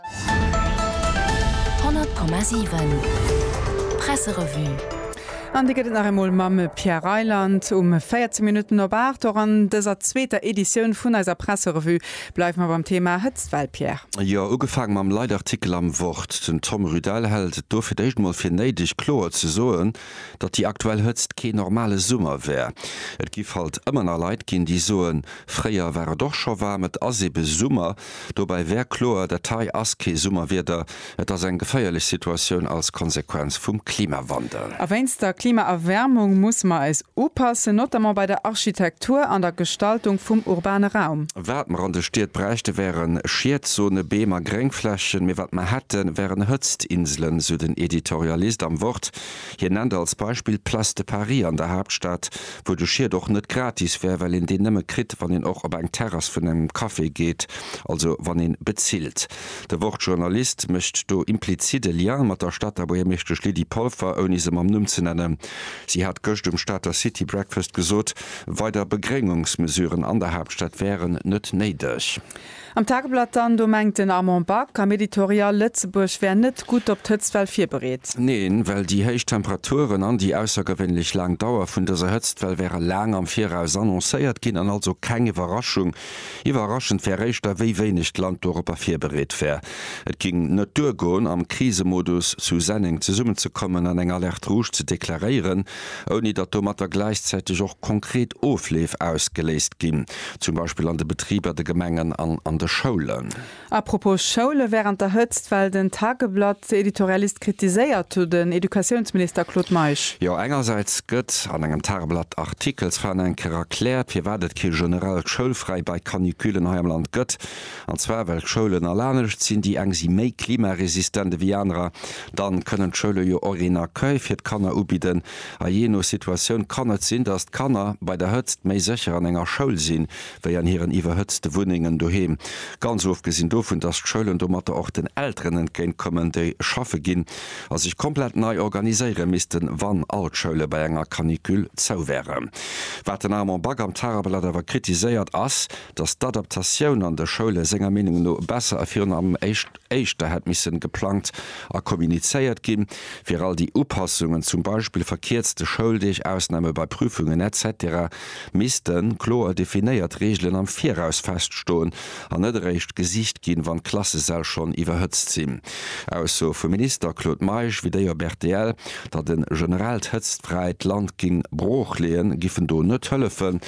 100,7 Presserevue An déi gëtt et nach emol mam Pierre Reyland um 14 Minutten op 8. Och an dëser zweeter Editioun vun eiser Presserevue bleiwe mer beim Thema Hëtztwell, Pierre. Jo, ugefaange mam Leitartikel am Wort. Den Tom Rydell hält et do fir d'éischt emol fir néideg, kloer ze soen, datt déi aktuell Hëtzt kee normale Summer wär. Et giff halt ëmmer nach Leit ginn, déi soen, fréier war et och scho waarm, et ass ebe Summer. Dobäi wär kloer, dat hei ass kee Summerwieder, et ass eng geféierlech Situatioun als Konsequenz vum Klimawandel. A wéinst der Klimaerwäermung musse mer eis upassen, notamment bei der Architektur an der Gestaltung vum urbane Raum. Wat mer an de Stied bräichte wären Schiedzone, Beem a Gréngflächen, mee wat mer hätte wären Hëtztinselen, esou den Editorialist am Wort. Hien nennt als Beispill d'Place de Paris an der Haaptstad, wou de Schied och net gratis wär, well een deen nëmme kritt, wann een och op eng Terrass vun engem Café geet, also wann ee bezilt. De Wort-Journalist mécht do implizit e Lien mat der Stater Buergermeeschtesch Lydie Polfer, ouni se mam Numm ze nennen. Si hat gëscht um Stater City Breakfast gesot, weider Begréngungsmesuren an der Haaptstad wären net néideg. Am Tageblatt dann, do mengt den Armand Back am Editorial, Lëtzebuerg wär net gutt op d'Hëtztwell virbereet. Neen, well déi héich Temperaturen an déi aussergewéinlech laang Dauer vun dëser Hëtztwell wäre laang am Viraus annoncéiert ginn an also keng Iwwerraschung. Iwwerraschend wär éischter, wéi wéineg d'Land doropper virbereet wär. Et géing net duergoen, am Krisemodus zu Senneng zesummenzekommen an eng Alerte rouge ze deklaréieren. ouni datt domatter gläichzäiteg och konkret Ofleef ausgeléist ginn, zum Beispill an de Betriber, de Gemengen an an de Schoulen. Apropos Schoule wärend der Hëtzt, well den Tageblatt-Editorialist kritiséiert hu den Educatiounsminister Claude Meisch. Jo, engersäits gëtt an engem Tageblatt-Artikel zwar nach eng Kéier erkläert, firwat et kee generellt Schoulfräi bei Caniculen hei am Land gëtt, An zwar well d'Schoulen alanescht sinn, déi eng si méi klimaresistent ewéi anerer. Dann kënnen d'Schoule jo och een Accueil fir d'Kanner ubidden. A jee no Situatioun kann et sinn, dass d'Kanner bei der Hëtzt méi sécher an enger Schoul sinn, wéi an hiren iwwerhëtzte Wunnengen doheem. Ganz ofgesinn dovun, dass d'Schoulen domatter och den Elteren entgéint kommen, déi schaffe ginn a sech komplett nei organiséiere missten, wann all d'Schoule bei enger Canicule zou wären. Wat den Armand Back am Tageblatt awer kritiséiert, ass, datt d'Adaptatioun an de Schoule senger Meenung no besser a virun allem éischter hätt misse geplangt a kommunizéiert ginn, fir all déi Upassungen, zum Beispill verkierzte Schouldeeg, Ausname bei Prüfungen, etc. Missten kloer definéiert Reegelen am Viraus feststoen an net eréischt gesicht ginn, wann d'Klassesäll schonn iwwerhëtzt sinn. Ausso vum Minister Claude Meisch wéi déi op rtl, datt e generellt Hëtztfräit Land géing broochleeën, giffen do net hëllefen.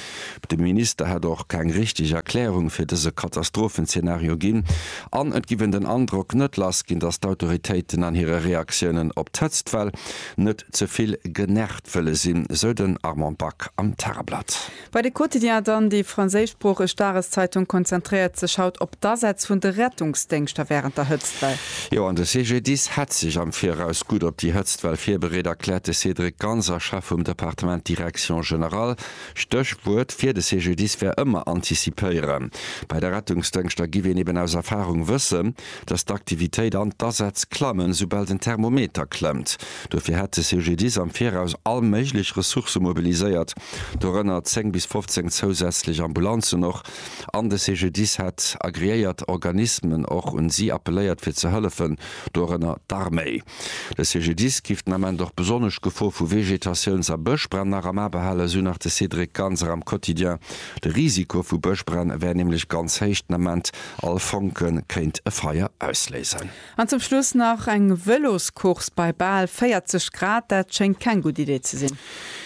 De Minister hätt och keng richteg Erklärung fir dëse Katastrophenzeenario ginn an et giff een den Androck net lass ginn, datt d'Autoritéiten an hire Reaktiounen op d'Hëtztwell net ze vill genervt wëlle sinn, sou den Armand Back am Tageblatt. Bei de Quotidien dann. Déi franséischsproocheg Dageszeitung konzentréiert sech haut op d'Asätz vun de Rettungsdéngschter wärend der Hëtztwell. Jo, an de CGDIS hätt sech am Viraus gutt op déi Hëtztwell virbereet, erkläert de Cédric Ganser, Chef vum Departement Direction générale. Stéchwuert fir de CGDIS wär ëmmer antizipéieren. Bei de Rettungsdëngschter giff een eben aus Erfarung wëssen, dass d'Aktivitéit an d'Asätz klammen, soubal den Thermometer klëmmt. Dofir hätt de CGDIS am Viraus all méiglech Ressourcë mobiliséiert, dorënner 10 bis 15 zousätzlech Ambulanzen och, an de CGDIS hätt agreéiert Organismen och un si appelléiert fir ze hëllefen, dorënner d'Arméi. De CGDIS géif den Ament och besonnesch d'Gefor vu Vegetatiouns a Bëschbränn nach am A behalen, esou nach de Cédric Ganser am Quotidien. De Risiko vu Bëschbränn wär nämlech ganz héich, den Ament all Fonke kéint e Feier ausléisen. An zum Schluss nach eng Vëloscourse bei bal 40 Grad, dat schéngt keng gutt Idee ze sinn.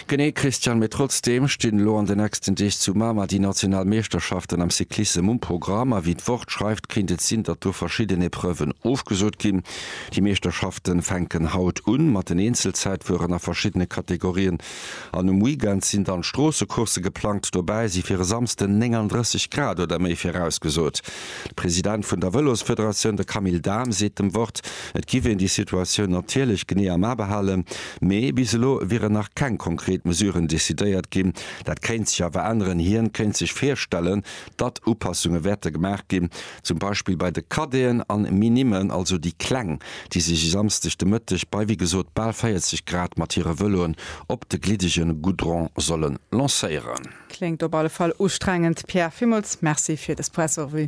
Genee Christian, mee trotzdeem stinn elo an de nächsten Deeg zu Mamer déi national Meeschterschaften am Cyclissem um Programm a wéi d'Wort schreift kéint et sinn datt do verschidden Epreuven ofgesot ginn. Déi Meeschterschaften fänken haut un mat den Eenzelzäitfueren a verschiddene Kategorien an um Weekend sinn dann Stroossecoursse geplangt. Dobäi si fir e Samsden 39 Grad oder méi virausgesot. De President vun der Vëlosfederatioun, de Camille Dahm seet dem Wort Et giff een déi Situatioun natierlech genee am A behalen, mee bis elo wieren nach keng konkret Mesuren decidéiert ginn. Dat kéint sech awer änneren. Hien kéint sech virstellen, datt Upassunge wäerte gemaach ginn, zum Beispill bei de Cadeeën an Minimmen, also déi Kleng, déi sech e Samsdeg de Mëtteg bei wéi gesot bal 40 Grad mat hire Vëloen op de gliddege Goudron solle lancéieren. Kléngt op alle Fall ustrengend. Pierre, villmools Merci fir des Pressrevue.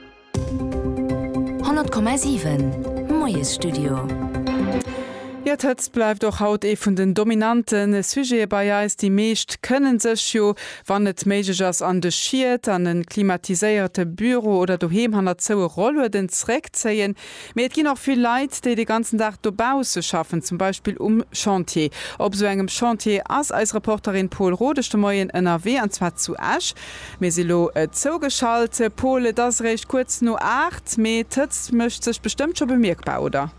100,7 Moiesstudio. Jo, d'Hëtzt bleift och haut ee vun den dominante Sujete bei eis. Déi meescht kënne sech jo, wann et méiglech ass, an de Schiet, an e klimatiséierte Büro oder doheem hanner zoue Rollueden zréckzéien. Mee et ginn och vill Leit, déi de ganzen Dag dobausse schaffen, zum Beispill um Chantier. Op esou engem Chantier ass eis Reporterin Pol Rodesch de Moien ënnerwee, an zwar zu Esch. Mir si lo zougeschalt. Pol, et ass eréischt kuerz no aacht, mee d'Hëtzt mécht sech bestëmmt scho bemierkbar, oder?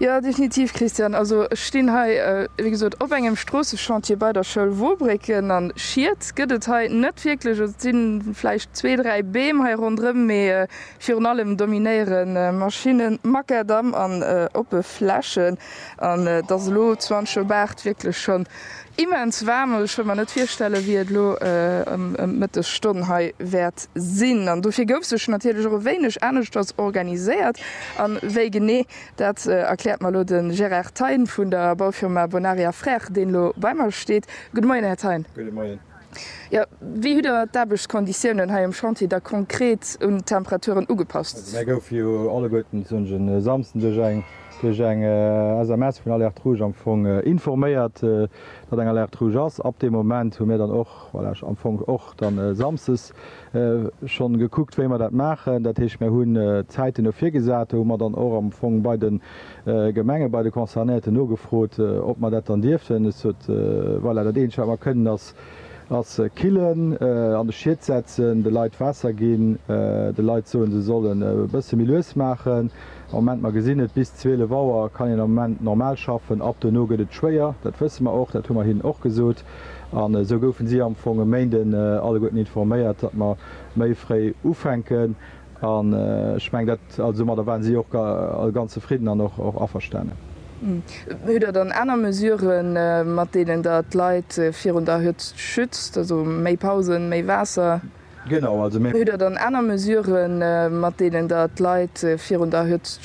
Jo, definitiv, Christian. Also ech stinn hei, wéi gesot, op engem Stroosseschantier bei der Schoul Wobrécken. An Schied gëtt et hei net wierklech. Et si vläicht zwee, dräi Beem hei ronderëm, mee Virun allem dominéiere Maschinnen, Makadamm an oppe Flächen. An et ass elo zu Anchobaert wierklech schonn immens waarm. Also ech wëll mer net virstellen, wéi et elo ëm d'Mëttesstonn hei wäert sinn. An dofir gouf sech natierlech och e wéineg aneschters organiséiert. A wéi genee, dat erkläert mer elo de Gérard Thein vun der Baufirma Bonaria Frères, deen elo bei mer steet. Gudde Moien, Här Thein. Gudde Moien. Jo, wéi hutt der d'Aarbechtskonditiounen hei um Chantier da konkret un d'Temperaturen ugepasst? Mir goufe jo alleguerten zënter e Samsden duerch eng duerch eng SMS vun Alerte Rouge am Fong informéiert, datt eng Alerte Rouge ass. Ab deem Moment hu mir dann och, voilà, am Fong och dann samsdes schonn gekuckt, wéi mer dat maachen. Dat heescht, mir hunn Zäiten do virgesat. Do hu mer dann och am Fong bei de Gemenge, bei de Concernéierten nogefrot, ob mer dat dann dierften. Et sot, Voilà, dat Eenzegt, wat mer kënnen, ass killen, an de Schiet setzen, de Leit Waasser ginn, de Leit soen, se sollen e bësse méi lues maachen. Am Moment, mer gesinn et, bis 12 Auer kann een am Moment normal schaffen. Ab duerno gëtt et schwéier. Dat wësse mer och. Dat hu mer hinnen och gesot. An esou goufen si am Fong e Méinde alleguerten informéiert, datt mer méi fréi ufänken. An ech mengen, dat, also domadder waren si och all ganz zefridden an och averstanen. Hutt Der dann aner Mesuren, mat deenen Der d'Leit virun der Hëtzt schützt, also méi Pausen, méi Waasser? Genau, also mir. Hutt Der dann aner Mesuren, mat deenen Der d'Leit virun der Hëtzt.